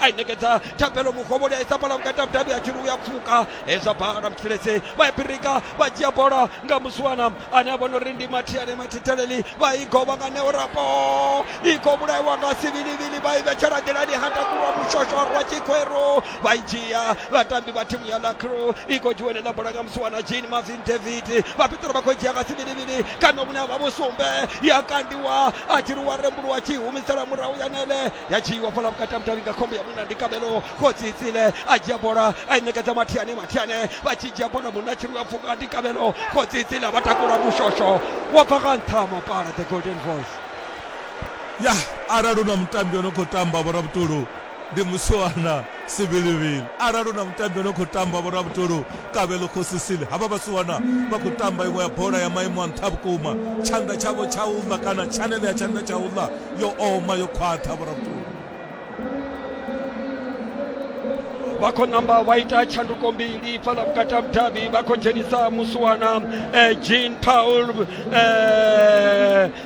a i ṋekedza thabelo mugovholi a isa bola vhukati ha vhudavhi ha tshiri u ya pfuka hezwa bala mutshilese vha ya pirika vha dzhia bola nga musiwana ane a vhona uri ndi mathiane mathitheleli vha i govha nga neo rapo i khou vhulaiwa nga sivilivili vha i vhetshela nḓilani ha takulwa mushosho rwa tshikweru vha i dzhia vhatambi vha thimu ya lacro i khou dzhiwa enela bola nga musiwana jean marvin david vha piṱera vha khou dzhia nga sivilivili kana vhune ha vha vhusumbe ya kandiwa a tshiri wa rembuluwa tshi humisela murahu ya nele ya dzhiiwa fhala vhukati ha mudavhi nga khombo ya munna ndi kabelo khotsi tsile a dzhia bola a i ṋekedza mathiane mathiane vha tshi dzhia bola munna tshi lwa pfuka ndi kabelo khotsi tsile a vha takula mushosho wa bva nga nṱha ha mapala the golden voice ya arali hu na mutambi o no khou tamba vho rabutulu ndi musiwana Sivhilivhili, Arali hu na mutambi a no khou tamba vhoravhutolu, Kabelo Khosi Sili, havha vhasiwana vha khou tamba iṅwe ya bola ya maimo a nṱha vhukuma. Tshanḓa tshavho tsha u ḽa kana tshanele ya tshanḓa tsha u ḽa yo oma, yo khwaṱha vhoravhutolu. vha khou namba vha ita tshanduko mbili fhaḽa vhukati ha vhudavhi vha khou dzhenisa musiwana eh, jean paul eh,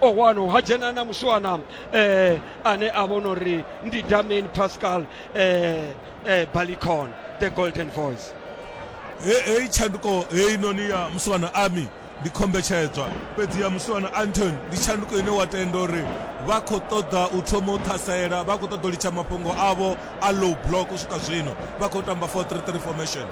o wano ha dzhena na muswana eh, ane a vhona uri ndi damain pascal eh, eh, balicon the golden voice heyi tshanduko heyi noni ya muswana army ndi khombetshedzwa fhedzi ya muswana anton ndi tshanduko ine wa tenda uri vha khou ṱoḓa u thoma u ṱhasela vha khou ṱoḓa u litsha mafhungo avho a low block u swika zwino vha khou tamba 433 formation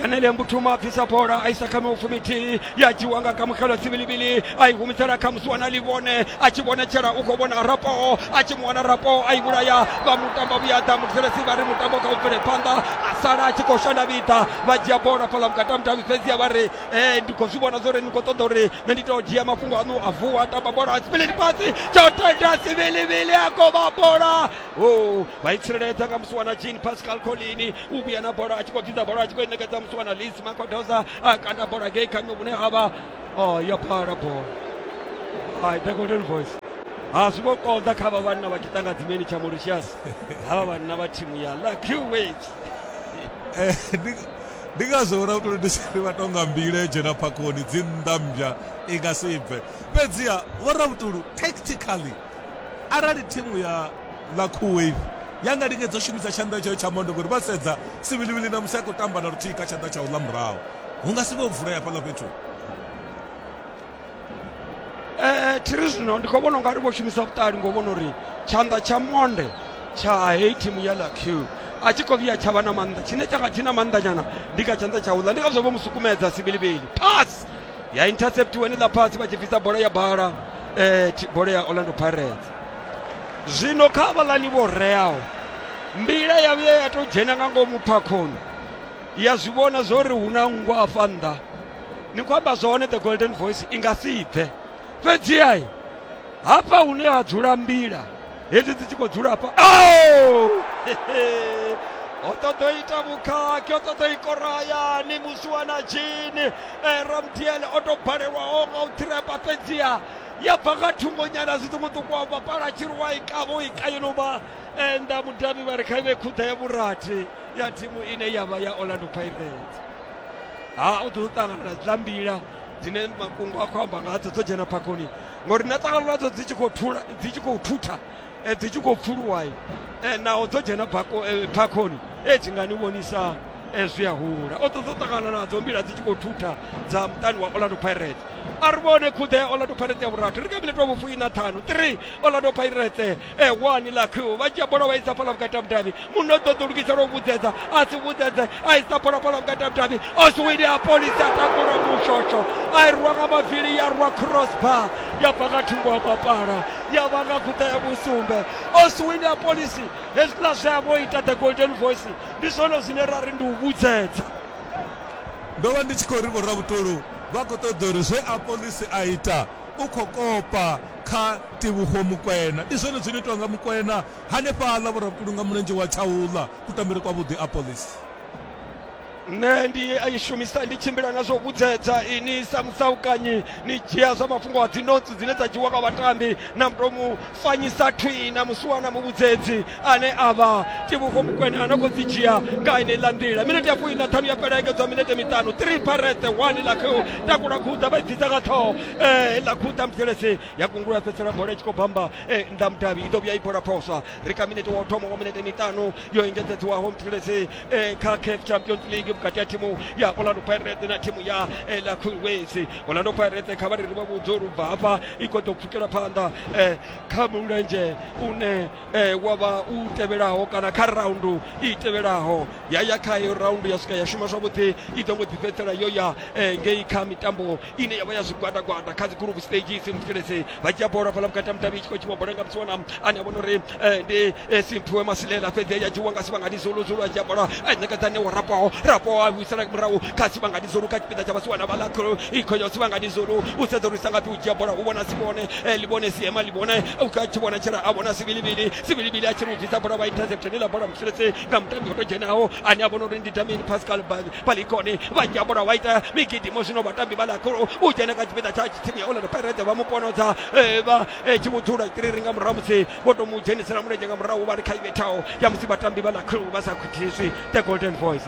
yanele mbutuma bvisa bola a isa kha miufumithihi ya dzhiwa nga kamukelo tsibilibili a i humisela kha musi wana livhone a tshi vhonetshela u khou vhona rapo a tshi mu wana rapo a i vhulaya vha mutambo vhuyaḓa muthelesi vha ri mutambo kha u bvele phanḓa a sala a tshi khou shanda vhiḓa vha dzhia bola fhaḽa vhukati mutavhi fhedzi a vha ri e ndi khou zwi vhona zwo ri ni khou ṱoḓa uri nṋe ndi tou dzhia mafhungo aṋu a vuwa a tamba bola tsibilili fhasi tsho tenda tsibilibili a kovha bola o vha i tsireledza nga musi wana jean pascal colini u vhuya na bola a tshi khou dzidza bola a tshi khou i ṋekedza musi wana lisi makodoza a kanda bola ngei kha nnyo vhune ha vha o yo phala bola hai the golden voice ha zwi vho konḓa kha vha vhanna vha tshiṱanga dzimeni tsha mauritius ha vha vhanna vha thimu ya lucky wage Eh, ndi- ndi ngazwo vhona kutoli ndi sari vha tonga mbila yo dzhena phakhoni dzi nnḓa mmbya i nga si bve fhedziha vhorabutulu tactically arali thimu ya ḽa cool wave ya nga lingedza u shumisa tshanḓa tshayo tsha mondo ngori vha sedza sivilivili na musi a khou tamba na luthihi kha tshanḓa tsha u ḽa murahu hu nga si vhe u vulea fhaḽa fhethu ee thiri zwino ndi khou vhona ungari vho shumisa vhuṱali ngo vhona uri tshanḓa tsha monde tsha heyi thimu ya la q a tshi khou vhuya tsha vha na maanḓa tshine tsha nga tshi na maanḓa nyana ndi kha tshanḓa tsha uḽa ndi ngazwo vho mu sukumedza sibilibili pass ya interceptiwa ni ḽa fhasi vha tshi bvisa bola ya bala eh, bola ya orlando pirates zwino kha vhalani vho reaho mbila ya vhuya ya tou dzhena nga ngomu phakhoni ya zwi vhona zwo ri hu na nngwa afha nnḓa ni khou amba zwone the golden voice i nga si bve fhedziha hafha hune ha dzula mbila hedzi dzi tshi khou dzula hafha oh! o ṱoḓo ita vhukhakhi o ṱoḓo i korayani musuwa na dzhini eh, ramdiel o tou balelwaho nga u ṱhirepa fhedziha ya bva nga thungonyana zwiṱukuṱuku wa vhapala tshiruwa i kavho i kayeluma enda eh, mudavhi vha ri kha ive khuḓa ya vhurathi ya thimu ine ya vha ya orlando pirates ha u ḓo ṱangana na dzambila dzine mafhungo a khou amba ngadzo dzo dzhena phakhoni ngori na ṱangano nadzo dzi tshi khou thula dzi tshi khou thutha eh, dzi tshi khou pfuluwai eh, naho dzo dzhena eh, phakhoni e dzi nga ni vhonisa zwi a hula o ṱoḓa u ṱangana nadzo mbila dzi tshi khou thutha dza muṱani wa orlando pirate a ri vhone khuḓe ya orlando pirate ya vhurathi ri nga vhile tou vhufuina ṱhanu three orlando pirate e wani la crew vha dzhia bola vha isa fhala vhukati ha mudavhi muno ṱoḓa u lugisela u vhudzedza a si vhudzedze a isa bola fhala vhukati ha mudavhi oswini a polisi a takula mushotsho a i rwa nga mavili ya rwa crossbar ya bva nga thungo ha mapala ya vha nga kuṱa ya vhusumbe oswini a polisi hezwiḽa zwe a vho ita the golden voice ndi zwone zwine ra ri ndi u vhudzedza ndo vha ndi tshi khou ri vhoravhutolu vha khou ṱoḓa uri zwe a polisi a ita u khou kopa kha Tevhuho Mukwena. Ndi zwone zwi no itiwa nga Mukwena hanefhaḽa vhurabukulu nga mulenzhe wa Tshaula. Kutambele kwavhuḓi a Police. Nṋe ndi a i shumisa ndi tshimbila na zwo vhudzedza ini sa musaukanyi ni dzhia zwa mafhungo a dzi notsi dzine dza dzhiwa nga vhatambi na muto mu fanyisa thwii na musuwa na muvhudzedzi ane a vha Tevhuho Mukwena a no khou dzi dzhia nga heneiḽa nḓila. Minete ya fumi na ṱhanu ya fhela engedzwa minete miṱanu. Three Pirates One Lakhiu takula khuḓa vha i bvisa nga ṱhoho heiḽa khuḓa Mdzelezi ya gungula ya fhedzisela bola i tshi khou bamba eh, nnḓa mudavhi i ḓo vhuya i bola phosa ri kha minete wa u thoma wa minete miṱanu yo engedzedziwaho mthilesi eh, kha caf champions league vhukati ha thimu ya orlando pirates na thimu ya eh, la queens orlando pirates kha vha ri ri vha vhudze uri ubva hafha i khou ḓo pfukela phanḓa eh, kha mulenzhe une eh, wa vha u tevhelaho kana kha raundu i tevhelaho ya ya kha iyo raundu ya swika ya shuma zwavhuḓi i ḓo mbo ḓi fhedzisela yo ya eh, ngei kha mitambo ine yavha ya zwigwada gwada kha dzi group stages muthetshelese vha dzhia bola fhala vhukati ha mudavhi i tshi khou tshiwa bola nga mutsuwana ane a vhona uri eh, ndi eh, simphiwe masilela fhedzi ya dzhiwa nga sivhangani zulu zulu a dzhia bola a ṋekedza ṋewo rapoho rapoho a vhuisela murahu kha sivhangani zulu kha tshipiḓa tsha vhasiwana vha ḽa i khou ya sivhangani zulu u sedza uri sa ngafhi u dzhia bola u vhona si vhone eh, li vhone siema li vhone u khou ya tshi vhona tshela a vhona sivilivili sivilivili a tshi ri u bvisa bola vha intercept ni ḽa bola muthetshelese nga mutambi o to dzhenaho ane a vhona uri ndi damini pascal Ba- palikoni vajambo ra waita migidimo zwino vhatambi vha ḽakulu u dzhena kha tshipiḓa tsha thimu ya orlando pirate vha mu ponodza eh, vha eh, tshi vhudzula tiriri nga murahu musi vho tou mu dzhenisela mulenzhe nga murahu vha ri kha ivhethaho ya musi vhatambi vha ḽakulu vha sa khuthiswi the golden boys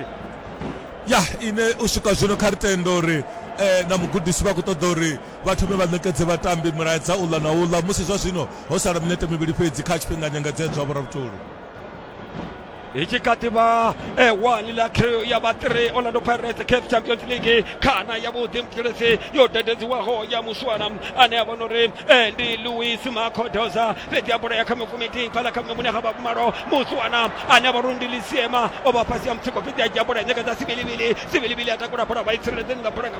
ya ine u swika zwino kha ri tenda uri eh, na mugudisi vha khou ṱoḓa uri vha thome vha ṋekedze vhatambi mulaedza uḽa na uḽa musi zwa zwino ho sala minete mivhili fhedzi kha tshifhinganyangadzedzwa vho ravhutoli hi chikativa e one la trio ya va three orlando pirates caf champions league khana ya vhuḓi mutshilisi yo dededziwaho ya muswana ane a vha no ri e ndi louis macodoza fhedzi a bola ya kha mifumiti fhala kha mune ga vhakumalo muswana ane a vha uri ndi lisiema o vha fhasi ya mutsiko fhedzi a dzhia bola ya nyaka dza sivilivili sivilivili a takula bola vha i tsireledzeni nga bola nga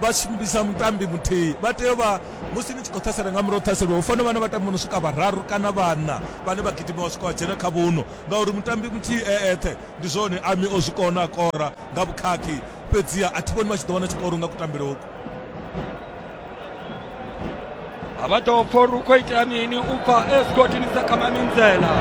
Vha tshi vhidza mutambi muthihi, vha tea u vha, musi ni tshi khou ṱhasela nga murahu ha u ṱhaseliwa, hu fanela u vha na vhatambi vho no swika vhararu kana vhaṋa vhane vha gidima vha swika vha dzhena kha vhuṋwe ngauri mutambi muthihi e eṱhe. Ndi zwone Ami o zwi kona, a kora nga vhukhakhi, fhedziha a thi vhoni vha tshi ḓo wana tshikoro nga kutambele uku. a vha ḓo pfha uri u khou itea mini u bva esigodini sa kha maminzela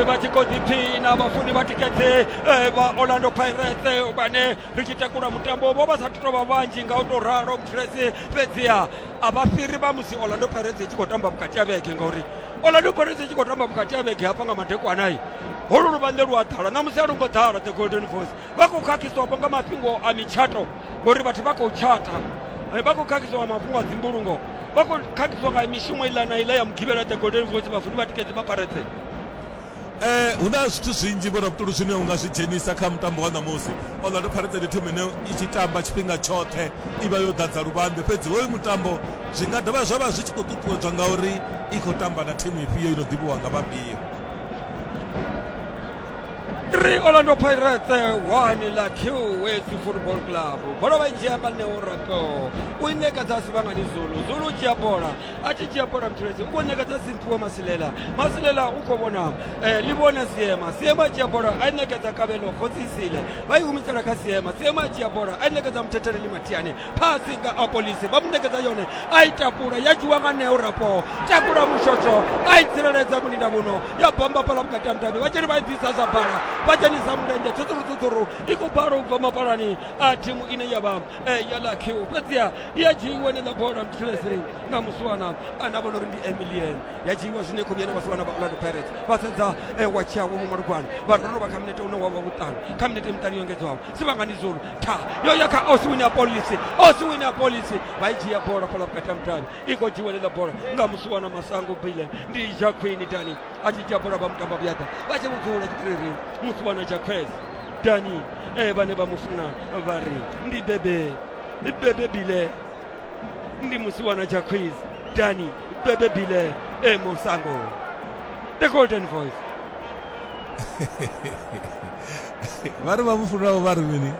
vha tshi khou ḓiphina vhafuni vha tikedze eh, vha orlando pirates eh, vhane ri tshi takula mutambo vho vha sa thu tou vha vhanzhi nga u tou ralo mutresi fhedziha a vha fhiri vha musi orlando pirates i tshi khou tamba vhukati ha vhege ngauri orlando pirates i tshi khou tamba vhukati ha vhege hafha nga madekwanai holu luvhanḓe lu a ḓala ṋamusi a lu ngo ḓala the golden voice vha khou khakhiswapo nga mafhingo a mitshato ngori vhathu vha khou tshata vha khou khakhiswa nga mafhungo a dzimbulungo vha khou khakhiswa nga mishumo iḽa na iḽa ya mugivhela the golden voice vhafuni vha tikedzi vha pirates Eh, hu na zwithu zwinzhi vho rabutulu zwine u nga zwi dzhenisa kha mutambo wa ṋamusi orlando pirates ndi thimu ine i tshi tamba tshifhinga tshoṱhe i vha yo ḓadza luvhanḓe fhedzi hoyu mutambo zwi nga dovha zwa vha zwi tshi khou ṱuṱuwedzwa nga uri i khou tamba na thimu ifhio i no ḓivhiwa nga vhafhio 3 orlando pirates 1 la qwesi football club bola vha i dzhia nga ṋeo rato u i ṋekedza sivhangani zulu zulu u dzhia bola a tshi dzhia bola muthelezi u khou ṋekedza dzimphiwa masilela masilela u khou vhona eh, ḽi vhona siema siema a dzhia bola a i ṋekedza kavhelo khotsisile vha i humisela kha siema siema a dzhia bola a i ṋekedza muthetheleli mathiani phasi nga apolisi vha mu ṋekedza yone a i takula ya dzhiwa nga neo rapo takula mushosho a i tsireledza mulinda muno ya bamba pala vhukati ha mudavhi vha tsheni vha i bvisa zwa bala vha dzhenisa mulenzhe tshutsuru tshutsuru i khou bala u bva mapalani a thimu ine ya vha Eh, ya lucky u fhedziha i a dzhiiwa eneiḽa bola mthilesei na musiwana ane a vhona uri ndi emilian ya dzhiiwa zwine khou yena vhasiwana vha orlando pirates vha sedza eh, wa tshiawo vho malugwana vha ri ro vha kha minete une wa vha vhuṱanu kha minete miṱanu yo engedzwaho sivhangani zulu tha yo ya kha osiwini ya polisi osiwini ya polisi vha i dzhia bola fhala vhukati ha mudavhi i khou dzhiiwa eneiḽa bola nga musiwana masango bilen ndi jaquini dani a tshi dzhia bola vha mutamba vhuyaḓa vha tshi vhudzula tshitiriri musiwana jaquez danyi e eh, vha ne vha mu funa vha ri ndi bebe bebe bile ndi musiwana tsha quiz danyi bebe bile e musango the golden voice vha ri vha mu funaho vha ri mini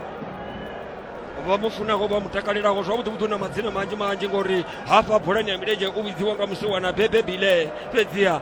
vha mu funaho vha mu takalelaho zwavhuḓi vhuḓi na madzina manzhi manzhi ngori hafha bolani ya milenzhe u vhidziwa nga musiwana bebe bile fhedziha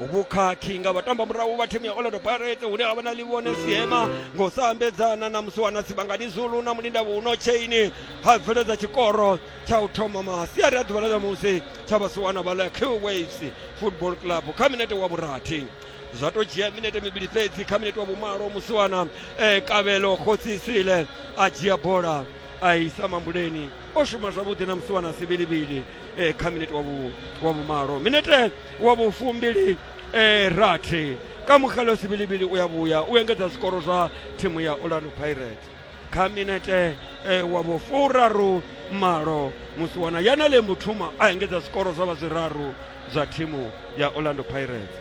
vhukhakhi nga vhatamba murahu vha thimu ya orlando pirates hune ha vha na livhone siema ngo sa ambedzana na musi wana sibangani zulu na mulinda vhuno chaini ha bveledza tshikoro tsha u thoma masiari a ḓuvha ḽa ṋamusi tsha vhasiwana vha ḽa q waves football club kha minete wa vhurathi zwa to dzhia minete mivhili fhedzi kha minete wa vhumalo musiwana e eh, kavhelo khotsisile a dzhia bola a isa mambuleni o shuma zwavhuḓi na musi wana sivhilivhili eh, kha minete wa vhu- wa vhumalo minete wa vhufumbili eh, rathi ka mukgalo sivhilivhili u ya vhuya u engedza zwikoro zwa thimu ya orlando pirates kha minete eh, wa vhufuraru malo musi wana yanale muthuma a engedza zwikoro zwa vha zwiraru zwa thimu ya orlando pirates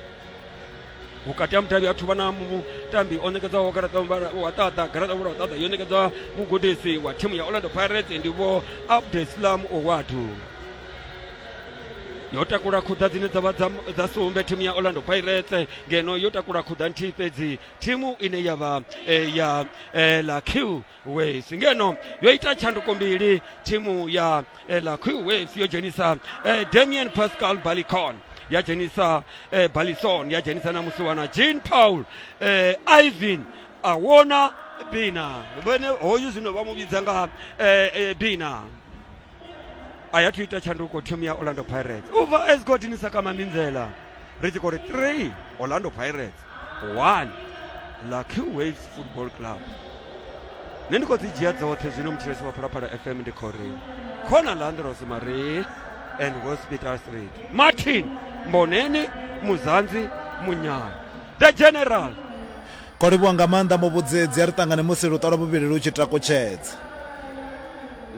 vhukati ha mudavhi a thuvha na mutambi o nekedzaho garaṱa wa ṱaḓa garaṱa vhula wa ṱaḓa yo nekedza mugudisi wa thimu ya orlando pirates ndi vho abdeslam owadu yo takula khuḓa dzine dza vha dza sumbe thimu ya orlando pirates ngeno yo takula khuḓa nthihi fhedzi thimu ine ya vha eh, ya eh, la q waves ngeno yo ita tshanduko mbili thimu ya eh, la q waves yo dzhenisa eh, damian pascal balicon ya dzhenisa eh, balison ya dzhenisa na musiwana jean paul eh, ivan awona bina vhene hoyu zwino vha mu vhidza nga eh, eh, bina a ya thu ita tshanduko thimu ya orlando pirates u bva esgotini sakama minzela ri tshi khou ri 3 orlando pirates 1 lucky waves football club nṋe ndi khou dzi dzhia dzoṱhe zwino mutshilesi wa phalaphala fm ndi khou ri khona landros marie and hospital street martin mboneni muzanzi munyana the general Ro livhuwa nga maanḓa muvhudzedzi, a ri ṱangane musi luṱa lwa vhuvhili lu tshi takutshedza.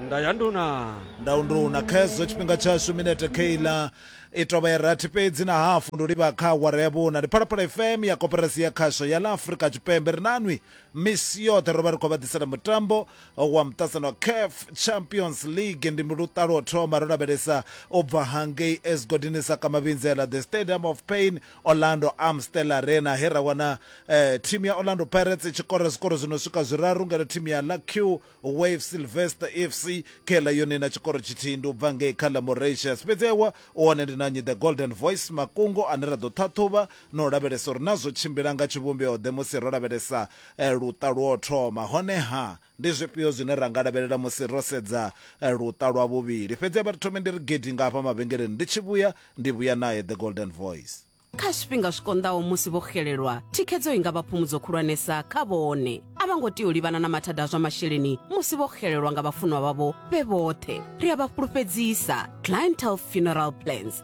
Nda ya nduna. Nda u nduna, khezwo tshifhinga tshashu minete kheiḽa i tovha ya rathi fhedzi na hafu ndi u livha kha awara ya vhuna. Ndi Phalaphala FM ya Koporasi ya Khasho ya ḽa Afrika Tshipembe ri nanwi misi yoṱhe ro vha ri khou vha ḓisela mutambo wa muṱasano wa CAF Champions League ndi luṱa lwo thoma ro lavhelesa u bva hangei Esgodini Sakamavhinzela the Stadium of Pain Orlando Amstel Arena he ra wana eh, thimu ya Orlando Pirates tshi kora zwikoro zwi no swika zwiraru ngeno thimu ya Lucky Wave Sylvester FC khe ḽa yone na tshikoro tshithihi ndi u bva ngei kha ḽa Mauritius fhedzi ewa u hone ndi na nnyi the Golden Voice Makungo ane ra ḓo ṱhaṱhuvha na u lavhelesa uri na zwo tshimbila nga tshivhumbeo ḓe musi ro lavhelesa eh, luṱa lwo thoma honeha Ndi zwifhio zwine ra nga lavhelela musi ro sedza luṱa lwa vhuvhili? Fhedzi a vha ri thomi ndi ri gidi nga hafha mavhengeleni. Ndi tshi vhuya, ndi vhuya nae. The Golden Voice. Kha zwifhinga zwi konḓaho musi vho xelelwa, thikhedzo i nga vha phumudzo khulwanesa kha vhone. A vha ngo tea u livhana na mathada a zwa masheleni musi vho xelelwa nga vhafunwa vhavho vhe vhoṱhe. Ri a vha fhulufhedzisa. Clientele Funeral Plans.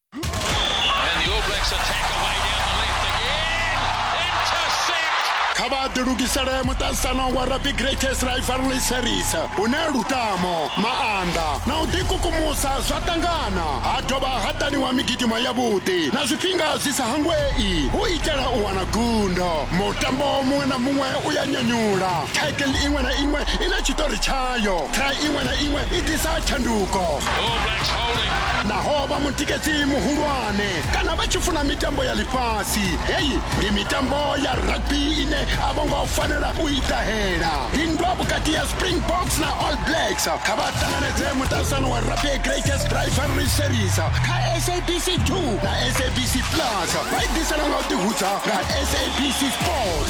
kha vha ḓilugisele muṱaṱisano wa rugby greatest rivalry series une lutamo maanḓa na u ḓikukumusa zwa ṱangana ha dovha ha ṱaniwa migidimo yavhuḓi na zwifhinga zwi sa hangwei u itela u wana gundo mutambo muṅwe na muṅwe u ya nyanyula title iṅwe na iṅwe i na tshiṱori tshayo tra iṅwe na iṅwe i ḓisa tshanduko naho vha mutikedzi muhulwane kana vha tshi funa mitambo ya ḽifhasi heyi ndi mitambo ya rugby ine a vho ngo fanela u i ṱahela ndindwa vhukati ya springboks na all blacks kha vha ṱanganedze muṱalusano wa rugby greatest rivalry series kha sabc 2 na sabc plus vha i ḓisela nga u ḓihudza nga sabc sport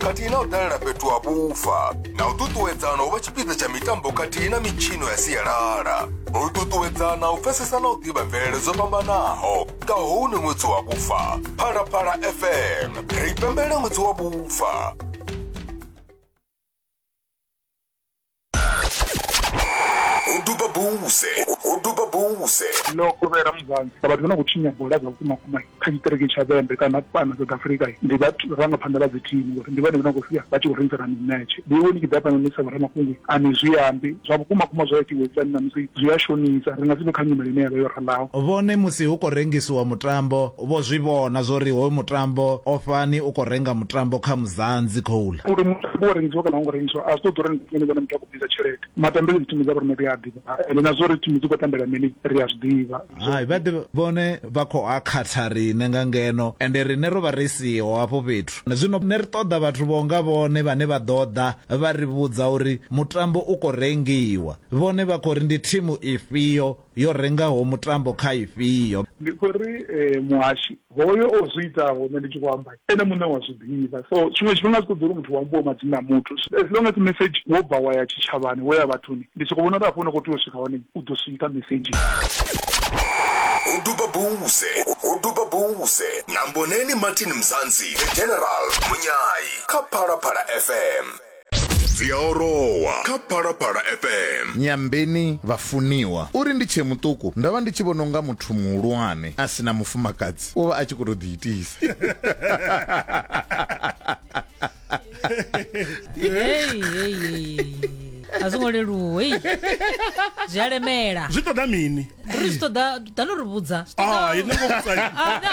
khathihi na u dalela fhethu ha vhufa na u ṱuṱuwedzana u vha tshipiḓa tsha mitambo khathihi na mitshino ya sialala u ṱuṱuwedzana u pfesesa na u ḓivha mvelele dzo fhambanaho nga hou ni ṅwedzi wa vhufa phalaphala fm ri pembele ṅwedzi wa vhufa ho duba buse ho duba buse ndo kovhela muzanzi sa vhathu vha no khou tshinya bola dza vhukumakuma kha tshiṱiriki tsha vhembe kana fhano south africa ndi vharangaphanḓa vha dzithimu ngori ndi vhone vha khou sia vha tshi khou rengisana mimetshe ndi iwe ni tshi ḓa fhano ni sa vhoramafhungo a ni zwi ambi zwa vhukumakuma zwa itiwe tsani na musi zwi a shonisa ri nga si vhe kha nyimele ine ya vha yo ralaho vhone musi hu khou rengisiwa mutambo Vho zwi vhona zwo ri hoyu mutambo o fhani u khou renga mutambo kha Muzanzi Coal. Uri mutambo wo rengiswa kana a wo ngo rengiswa a zwi ṱoḓi uri nṋe ndi vhone muthu a khou bvisa tshelede. Matambele dzi thimu dza vhoriṋe ri a ḓivha ende na zwa uri thimu dzi khou tambela mini ri a zwi ḓivha. Hai, vha ḓe vhone vha khou a khatha riṋe nga ngeno ende riṋe ro vha ri siho hafho fhethu. Zwino nṋe ri ṱoḓa vhathu vho nga vhone vhane vha ḓo ḓa vha ri vhudza uri mutambo u khou rengiwa. Vhone vha khou ri ndi thimu ifhio yo rengaho mutambo kha ifhio. Ndi khou ri muhashi hoyo o zwi itaho nṋe ndi tshi khou amba ene muṋe u a zwi ḓivha. So tshiṅwe tshifhinga a zwi ṱoḓi uri muthu hu ambiwe madzina a muthu as long as mesedzhi wo bva wa ya tshitshavhani wo ya vhathuni ndi sokou vhona uri hafho hune u khou tea u swika hone u ḓo swika mesedzhini. Ho duba Bouse, ho duba Bouse na Mboneni Martin Mzansi, The General, Munyai kha Phalaphala FM. dzi a orowa kha phalaphala fm nyambeni vhafuniwa uri ndi tshee muṱuku ndo vha ndi tshi vhona unga muthu muhulwane a si na mufumakadzi u vha a tshi khou tou ḓiitisa Hey, hey, hey, hey. a zwo ngo leluwa hei zwi a lemela zwi ṱoḓa mini ri zwi ṱoḓa dano ri vhudza Ah, i nongo vhudza Ah, no.